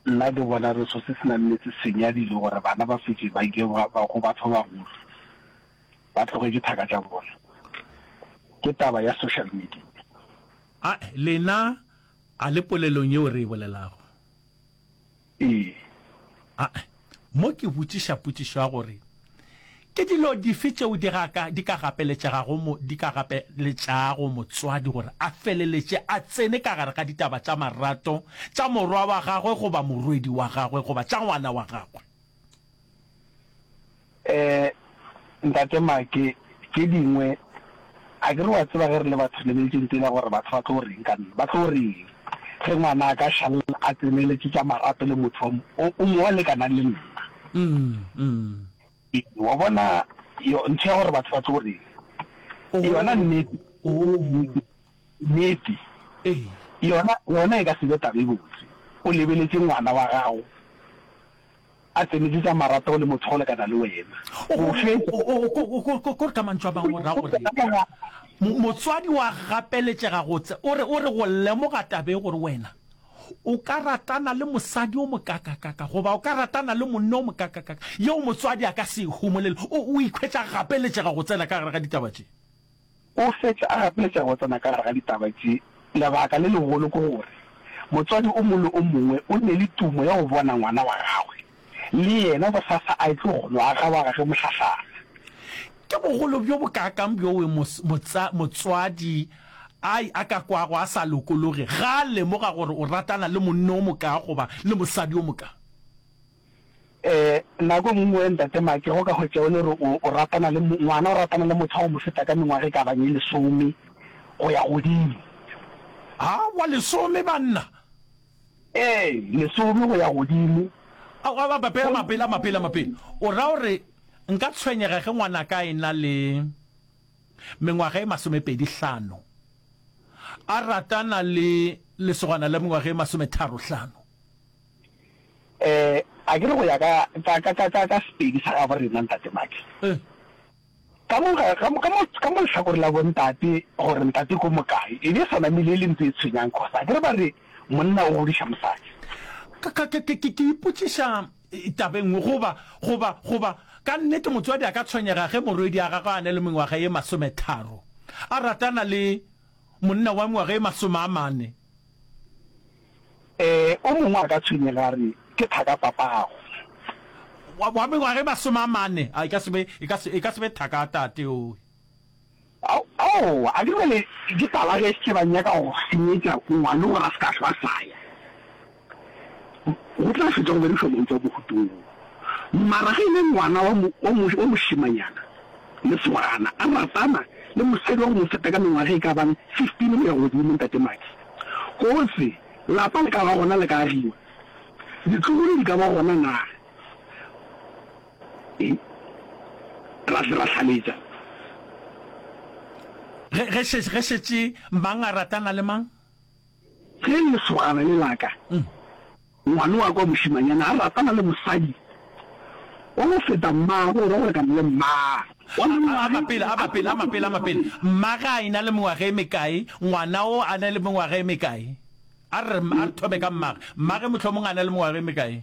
Nna ke bona re sose sena nnete senyadile gore bana ba fetše ba ike ba go batho ba bagolo ba tloge ke thaka tša bona ke taba ya social media. A lena a le polelong yeo re e bolelago? Ee. A. Mo ke botšiša potšišo ya gore, Ke dilo dife tšeo di ga ka di ka gapeletšegago mo di ka gapeletšago motswadi gore a feleletše a tsene ka gare ga ditaba tša marato tša morwa wa gagwe goba morwedi wa gagwe goba tša ngwana wa gagwe? Ee, Ntate Make, tše dingwe, a ke re wa tseba ge re le batho le beetše ntele gore batho ba tlo reng ka nna, ba tlo reng ge ngwana a ka šala a tseneletše tša marato le motho o mongwe wa lekanang le nna? Wa bona, yo, ntho ya gore batho ba tlo reng, yona nnete, nnete yona, yona e ka se be taba e botse. O lebeletše ngwana wa gago. A tsenetše tša marato le motho wa go lekana le wena. Go fetša. Ko re ka mantšu a mangwe go raya gore motswadi wa gapeletšega gotse. O re, o re go lemoga taba e gore wena o ka ratana le mosadi o mokakakaka goba o ka ratana le monna o mokakakaka, yeo motswadi a ka se e humolele. O, o ikhwetša a gapeletšega go tsena ka gare ga ditaba tše. O fetša a gapeletša go tsena ka gare ga ditaba tše, Lebaka le legolo ke gore motswadi o mongwe le o mongwe o nne le tumo ya go bona ngwana wa gagwe le yena bosasa a etlo go no aga wa gage mohlahlana. Ke bogolo bjo bokaakang bjoo motswadi a ka kwago a sa lokologe ge a lemoga gore o ratana le monna o mokaa goba le mosadi o mokaa! Ee, nako e nngwe, Ntate Make, go ka hwetša e le gore o, o ratana le mo, ngwana o ratana le motho wa go mo feta ka mengwaga e ka bang e lesome go ya godimo. Aowa, lesome, banna! Ee, lesome go ya godimo. Aowa, mapela, mapela, mapela, mapela. O ra gore nka tshwenyega ge ngwanaka a e-na le mengwaga e masomepedi-hlano a ratana le lesogana la mengwaga e masometharo-hlano? Eh, akere go ya ka, ka, ka, ka, ka, ka Sepedi sa gabo rena, Ntate Max, ka mo, ka, ka mo, ka mo, ka mo lehlakoreng la bontate, gore ntate ko mokae, e be e sa namile e le ntho e tshwenyang, cos akere ba re monna o godiša mosadi. Ka, ka, ka, ke, ke ipotšiša taba e nngwe, goba, goba, goba ka nnete motswadi a ka tshwenyega ge morwedi a gagwe a na le mengwaga e masometharo a ratana le monna wa mengwaga e masome a mane, Ee, o mongwe a ka tshwenyega a re, Ke thakapapago. Wa, wa mengwaga e masome a mane. A, e ka se be, e ka se, e ka se be thaka ya tate yowe. Ao, aowa, a ke bjale ke tala ge ke ba nyaka go senyetša ngwana gore a se ka hlwa a sa ya. Go tla fetša go berišwa mantšu a bohutong wo. Mara ge e le ngwana wa mo, wa mo, wa mošemanyana. Lesogana a ratana le mosadi wa go mo feta ka mengwaga e ka bang 15 go ya godimo, Ntate Maki. Kgosi, lapa le ka ba gona le ka agiwa? Ditlogolo di ka ba gona na? Ee, ra se ra hlaletša. Ge, ge, ge šetše mang a ratana le mang? Ge lesogana le la ka, ngwana wa ka wa mošemanyana, a ratana le mosadi wa go feta mmagwe, o ra gore ka mo le mmaa. Wa mengwaga a mapele, a mapele, a mapele, a mapele, mma ge a e-na le mengwaga e mekae, ngwana o a na le mengwaga e mekae? A re, a re thome ka mmagwe. Mmagwe mohlomongwe a na le mengwaga e mekae?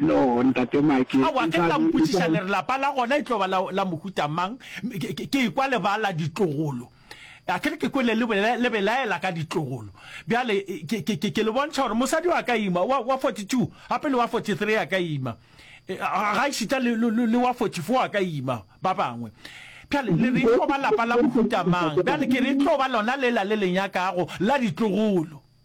no ntate make a wa ke tla mpotšiša le re lapa la gona e tlo ba la mohuta mang ke ikwa lebala ditlogolo a kere ke kwele le belaela ka ditlogolo bjale ke le bontšha gore mosadi wa ka ima wa 42 gape le wa 43 ya ka ima e, ga išita le wa 44 wa ka ima ba bangwe bjale le re tlo ba lapa la mohuta mang bjale ke re tlo ba lona lela le lenyakago la ditlogolo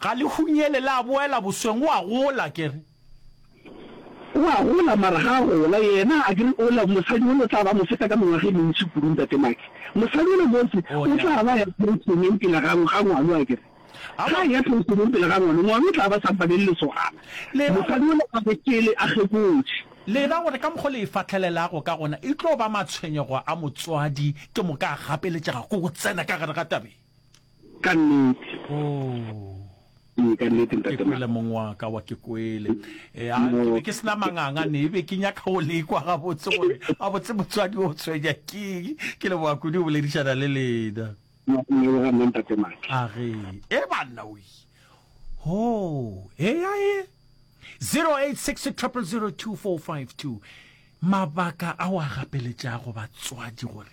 Ga le hunyele la boela bosweng o a gola ke re. O a gola mara ga a gola yena a ke re o la mosadi o le o tla ba mo feta ka mengwaga e mentši kudu ntate Maki. Mosadi o le motse o tla ba ya penšeneng pele ga ga ngwalo a ke re. Ga a ya penšeneng pele ga ngwalo, ngwalo o tla ba sa mpane le lesogana. Mosadi o le a re pele a kgekotše. Le ra gore ka mokgo le e fahlelelago ka gona e tlo ba matshwenyego a motswadi ke moka a gapeletšega ko go tsena ka gare ga tabeng. Ka nnete. Ooh. Ee, ka nnete, Ntate Maka. Ke kwele mong wa ka wa ke kwele. Eh, a, ke be ke sena manganga ne be ke nyaka go lekwa ga botse gore a botse motswadi o tshwenya keng. Ke le boa kudu boledišana le lena. No, ne o ga nna Ntate Maka. A re, e banna o yi. Ho, e ya e. 086 000 2452. Mabaka a wa gapeletša go batswadi gore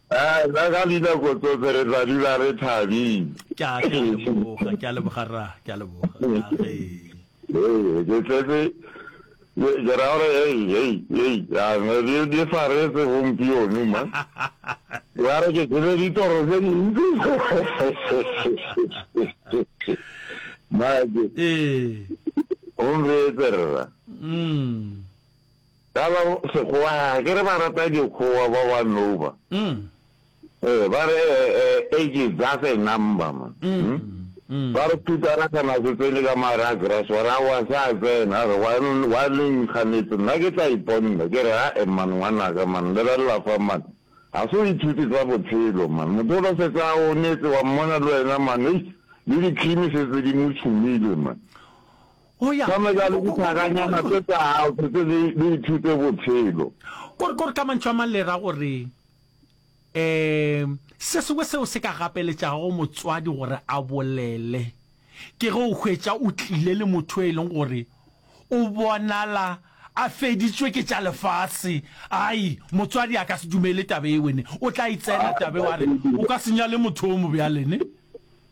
A, ka ka dinako tsohle re tla dula re thabile. Ke a, ke a leboga, ke a leboga rra, ke a leboga, ke a re. Hei, ke tletse, ke, ke ra gore hei, hei, hei, a, ne di, di faretse gompieno ma. Wa re ke tsebe ditoro tse dintsi. Mma ke, Ee. o nreetse rra. Mm. Ka la Sekgowa ga ke re ba rata dikgowa ba wa Nouba. Ee, ba re age is just a number man. Ba re Phutara kana se tsene ka mare a grass wa re aowa se a tsena, a re wa wa le nkganetse nna ke tla iponda. Ke re ae man ngwanaka man lebelela fa man, ga se o ithute tsa botshelo man, motho o la setse a onetse wa mmona le wena man eish le di-cream setse di mo tshumile man. Go ya. Gomme bjale dithakanyana tše tša gago se tse di, di ithute bophelo. Gore, gore ka mantšu a mang le ra gore, um, se sengwe seo se ka gapeletšago motswadi gore a bolele, ke ge o hwetša o tlile le motho e leng gore o bonala a feditšwe ke tša lefase. Ai, motswadi a ka se dumele taba e wene. O tla e tsena taba e, wa re, O ka se nyale motho o mo bjale, ne?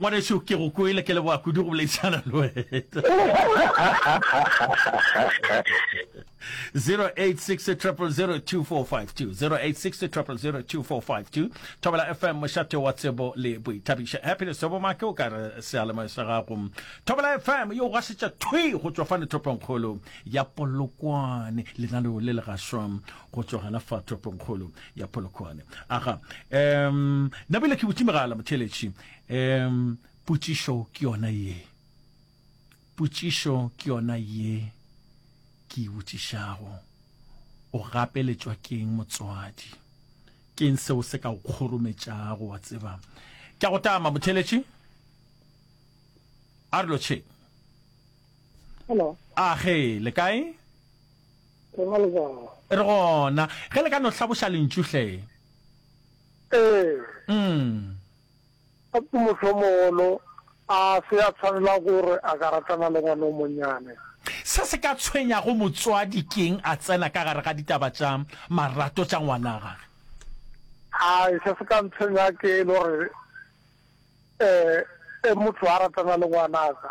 Ngwanešu, ke go kwele, ke leboga kudu go boledišana le wena. 0860002452, Thobela FM, mošate wa tsebo le boithabišo. Happiness Tobomake o ka re sealemoya sa gago. Thobela FM yo gasetša thwi go tšwa fane toponkgolo ya Polokwane, lenaneo le le gaswa go tšwa gana fa toponkgolo. ya polokwane aga um nabile ke botse megala motheletši um potšišo ke yona ye potšišo ke yona ye ke e botšišago o gapeletšwa keng motswadi keng seo se ka o kgorometšago wa tseba ke a go tama motheletši a re lotšheng hello a ge le kae Ke na le bana. E re gona, ge le ka no hlaboša lentšu hle. Ee. Umm. A ke mohlomogolo a se a tshwanela gore a ka ratana le ngwana o monnyane? Se se ka tshwenyago motswadi ke'ng a tsena ka gare ga ditaba tša marato tša ngwana gage? Hai, se se ka ntshwenya ke e le gore e, e motho a ratana le ngwanaka.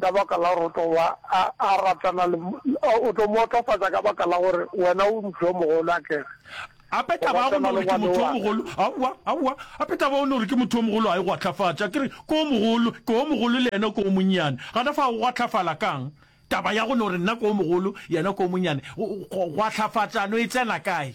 Ka baka la gore o tlo ba a, a ratana le, o tlo mo otlofatša ka baka la gore wena o motho yo mogolo, a ke re. Gape taba ya go no gore ke motho yo mogolo, aowa, aowa, gape taba ya go no gore ke motho yo mogolo ga e go ahlafatša. Ke re, ke o mogolo, ke o mogolo le yena ke o monnyane. Gona fao go ahlafala ka'ng? Taba ya go no gore nna ke o mogolo, yena ke o monnyane, go, go, go ahlafatšano e tsena kae?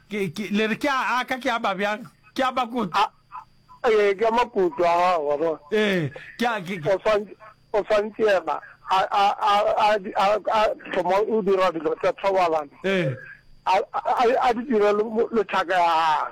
Ke, ke, le re ke a aka, ke a ba bjang? Ke a makutu. A, ee, ke a makutu a gago, wa bona. Ee, ke a, ke, ke. O swantše, o swantše yena, a, a, a, a, a, a thoma o dira dilo tša thobalano. Ee. A, a, a di dire le, le thaka ya gagwe.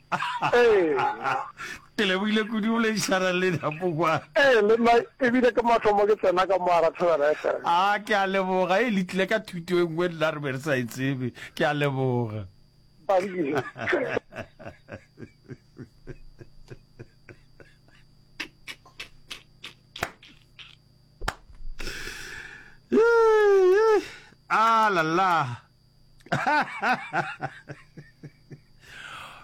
ke lebogile kudu o lešara le dapoa ee le nna ebile ke mathomo ke tsena ka mo ara thobela fm a ah, ke a leboga e le tlile ka thuto e nngwe nna re be re sa e tsebe ke a leboga a ah, lala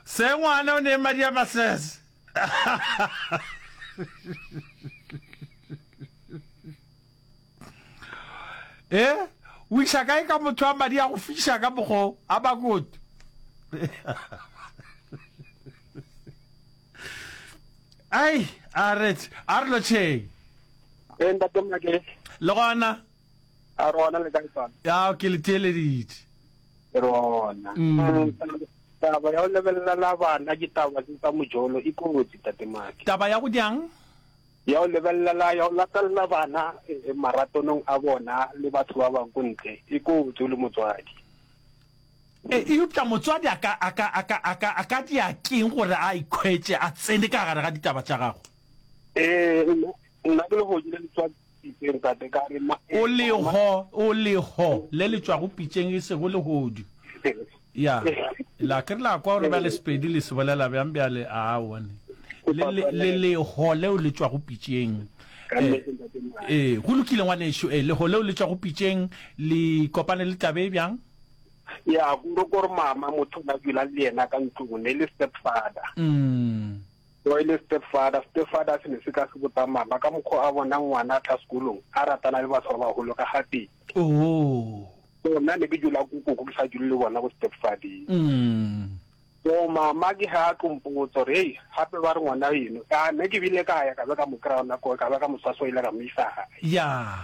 se ngwana o ne madi a masese e o iša kae ka motho a madi a go fiša ka mokgo a bakoto ai a retse a re lotšheng le gona A re gona le kae tsona? Ya, ke le theeleditše. Ke re gona. Mm. Taba ya go lebelelela bana ke taba tse tsa mojolo e kotsi, Tate Maki. Taba ya go jang? Ya go lebelelela, ya go latelela bana eh, maratonong a bona le batho ba bang ko ntle e kotsi o le motswadi. E, eupša motswadi a ka, a ka, a ka, a ka, a ka dia keng gore a ikhwetše a tsene ka gare ga ditaba tša gago? Eh, Nna ke lehoji le le tšwa pitšeng, tate, ka re, Ma, ee, O le go, o le go, le le tšwago pitšeng, e sego lehodu. Ya, la ke re la kwa gore bjale Sepedi le se bolela bjang bjale, a one. Le, le, le leho leo le tšwago pitšeng. Ee, ee, go lokile, ngwanešu, ee, leho leo le tšwago pitšeng, le kopane le taba e bjang? Ya, gore, gore mama, motho o na dula le yena ka ntlong, ne le stepfather. Umm. Yo e le stepfather, stepfather se ne se tla se botsa mama ka mokgwa o a bonang ngwana a tla sekolong a ratana le batho ba baholo ka ga pele. Ooh. So nna ne ke dula ko koko ke sa dule le bona ko stepfathing. Umm. So mama ke ha a tlo mpotsa gore hei gape ba re ngwana eno, ya ne ke bile ka ya ka be ka mo kry-a gona koo ka be ka mo swasoila ka mo isa gae. Yeah.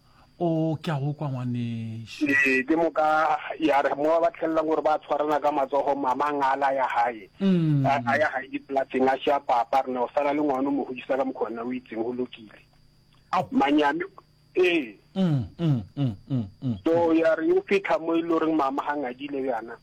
o ke a go kwa ngwanešu ee ke moka ya re mo ba tlhelelang gore ba tshwarana ka matsogo mama ngala ya gae mm. a ya gae dipolaseng a sha papa re ne o sala le ngwana o mo godisa ka mokgwa nna o itseng go lokile manyame ee mm, mm, so ya re o fitlha mo e le goreng mama ga ngadile yana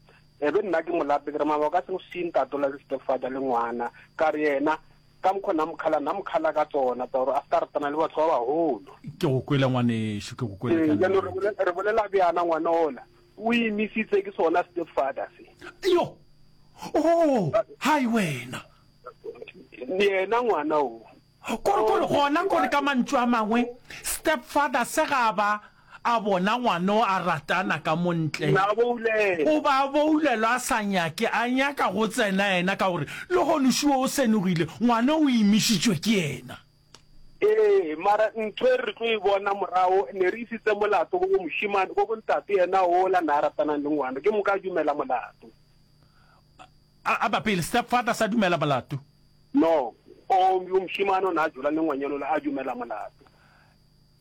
ebe nna ke molape ke re mama o ka se go seng tatola le stepfather le ngwana ka re yena Ka mokgwa Namkhala, Namkhala ka tsona tsa gore a se ka ratana le batho ba bagolo. Ke go kwele ngwanešu, ke go kwele ka Ee, jaanong re nnete. bolela, re bolela bjana ngwana ola o imisitse ke sona stepfather se. Yo! Oo! Hai wena! Le yena ngwana o. Kore, kore, gona kore ka mantšu a mangwe stepfather se ga a ba. A bona ngwana o a ratana ka mo ntle. O ba boulelwa a sa nyake, a nyaka go tsena yena ka gore lehono šo o senogile, ngwana o imišitšwe ke yena. Ee, mara ntho e re tlo e bona morago, ne re isitse molato go bo mošemane, go bo ntate yena ola na a ratanang le ngwana, ke moka a dumela molato. A, a ba pele, stepfather sa dumela molato? No, o, yo mošemane o na a jola le ngwanyana ola, a dumela molato.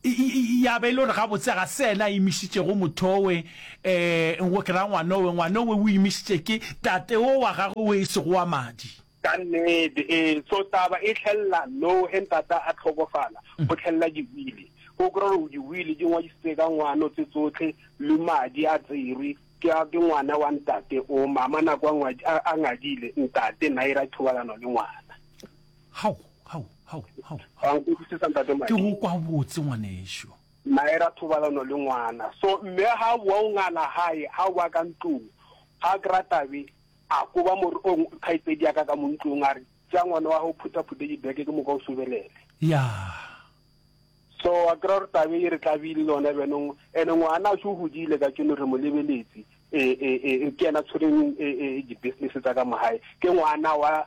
Ya ba e le gore gabotse ga se ena a imišitšego mothowe, um go ke ra ngwanowe, ngwanowe o imišitše ke tatewo wa gagwe wo e sego wa madi. Ka nnete, ee. So taba e tlhelela moo, ge ntata a hlokofala, go tlhelela diwili. O kry-a gore diwili di ngwadisitse ka ngwano tse tsohle, le madi a tserwe ke a ke ngwana wa ntate o. Mama nako a a ngadile, ntate naera thobalano le ngwana. Hau, hau, hau, hau, Wa hau. nkwešišetsa ntate Ke Madi. go kwa botse ngwanešu. Nae ra thobalano le ngwana. So mme ha a boa o ngala hae, ha a boa ka ntlong, ha a kry-a tabe, a koba mor-, o kgaitsedi ya ka ka mo ntlong a re, Tšea ngwana wa hao phuthaphuthe dibeke ke moka o sobelele. Yaa. So wa kry-a gore tabe e re tlabile le yona bjanong. And-e ngwanaše o hodile katšeno re mo lebeletse, e, e, e, ke yena a tshwereng e, e, di-business tsa ka mo gae. Ke ngwana wa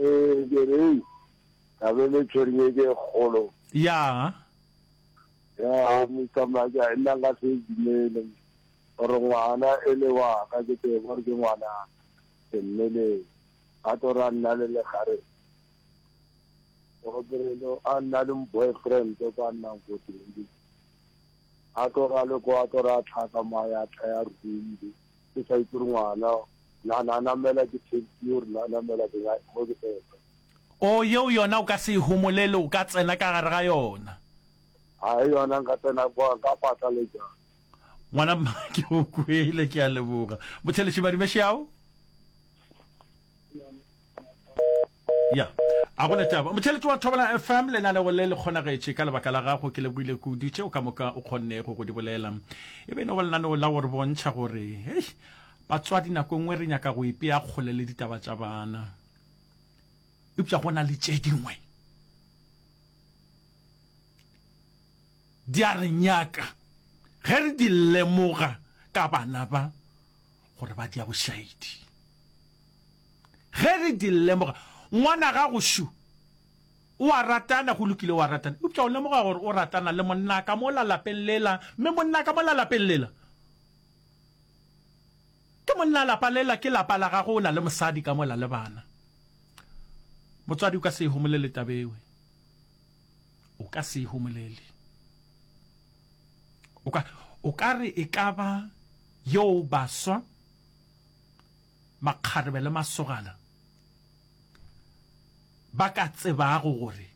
Ee, ke re, Hei, ka be le tšhwere ye ke e kgolo. Ya. Ya, Mister Maja, e nna nka se e dumele, gore ngwana e le wa ka, ke tsebe gore ke ngwana ke mmeleng. A tlo ra nna le legare, Obrelo a nna le boyfriend kwa nnang ko teng. A tlo ra le ko, a tlo ra tlhaka mo a ya tlha ya ruile. ke sa itse gore ngwana na na namela ke taxi or na namela ke ya mo ke tsena o yeo yona o ka se e homolele o ka tsena ka gare ga yona a e yona nka tsena kwa ka patla le ja ngwana mma ke o kwele ke a leboga botheletši badimešeao ya a gona taba motheletse wa thobela fm lenaneo le le kgonagetše ka lebaka la gago ke lebogile kudu tšeo ka moka o kgonnego go di bolela e be nogo lenaneo la gore bontšha gore hei batswadi nako nngwe re nyaka go ipea kgole le ditaba tša bana eupša go na le tše dingwe di a re nyaka ge re di lemoga ka bana ba gore ba di ya bošaedi Ge re di lemoga, ngwanagago Shu o a ratana, go lokile, o a ratana. Eupša o lemoga gore o ratana le monna ka mola lapeng lela, mme monna ka mola lapeng lela ke monna. Lapa lela ke lapa la gago, o na le mosadi ka mola le bana. Motswadi, o ka se e homolele taba ewe. O ka se e homolele. O ka, o ka re e ka ba yoo baswa. makgarebe le masogana ba ka tsebago gore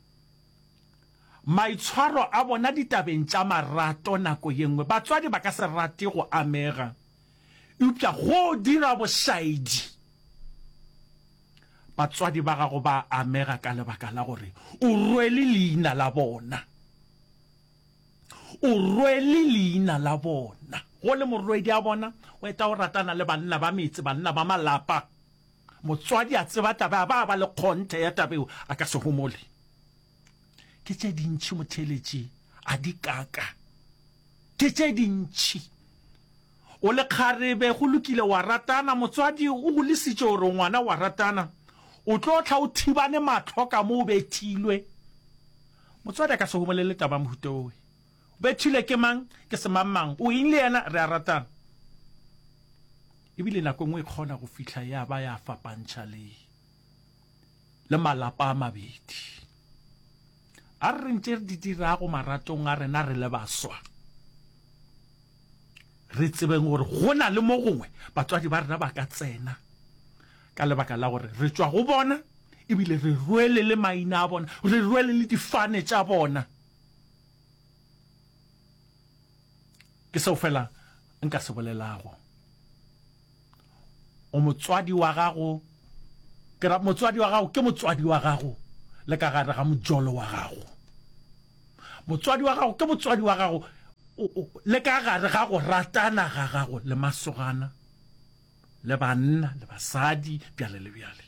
maitshwaro a bona ditabeng tša marato nako ye nngwe batswadi ba ka se rate go amega, eupša go dira bošaedi batswadi ba gago ba amega ka lebaka la gore o rwele leina la bona. O rwele leina la bona. Go le morwedi a bona, o eta o ratana le banna ba metse, banna ba malapa. Motswadi a tseba taba, a ba a ba le kgonthe ya taba eo, a ka se homole. Ke tše dintši motheeletši a di kaka. Ke tše dintši. O le kgarebe, go lokile, wa ratana, motswadi o go lesitše gore ngwana wa ratana, o tlo tla o thibane mahlo ka mo o bethilwe. Motswadi a ka se go bolele taba ya mohuta owe. O bethilwe ke mang, ke semangmang, o eng le yena, re a ratana. E bile nako e nngwe e kgona go fihla ya ba ya fapantšha le, le malapa a mabedi. A re re ntše re di dirago maratong a rena re le baswa. re tsebeng gore go na le mo gongwe batswadi ba rena ba ka tsena ka lebaka la gore re tšwa go bona ebile re rwele le maina a bona re rwele le difane tša bona ke seo fela nka se bolelago O motswadi wa gago, ke ra, motswadi wa gago ke motswadi wa gago le ka gare ga mojolo wa gago. Motswadi wa gago ke motswadi wa gago le ka gare ga go ratana ga gago le masogana le banna le basadi bjale le bjale.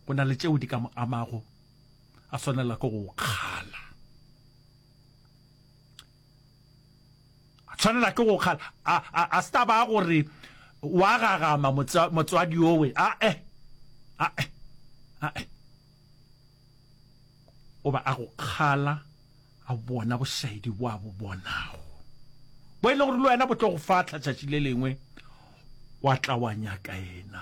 Go na le tšeo di ka mo amago, a swanela ke go kgala. a tshwanela ke go kgala a, a, a se taba gore wa gagama motswadi owe a e a e a e o ba a go kgala a bona bošaedi bo a bo bonago bo e le gore le wena bo tlo go fatlha tšatši le lengwe wa tla wa nyaka ena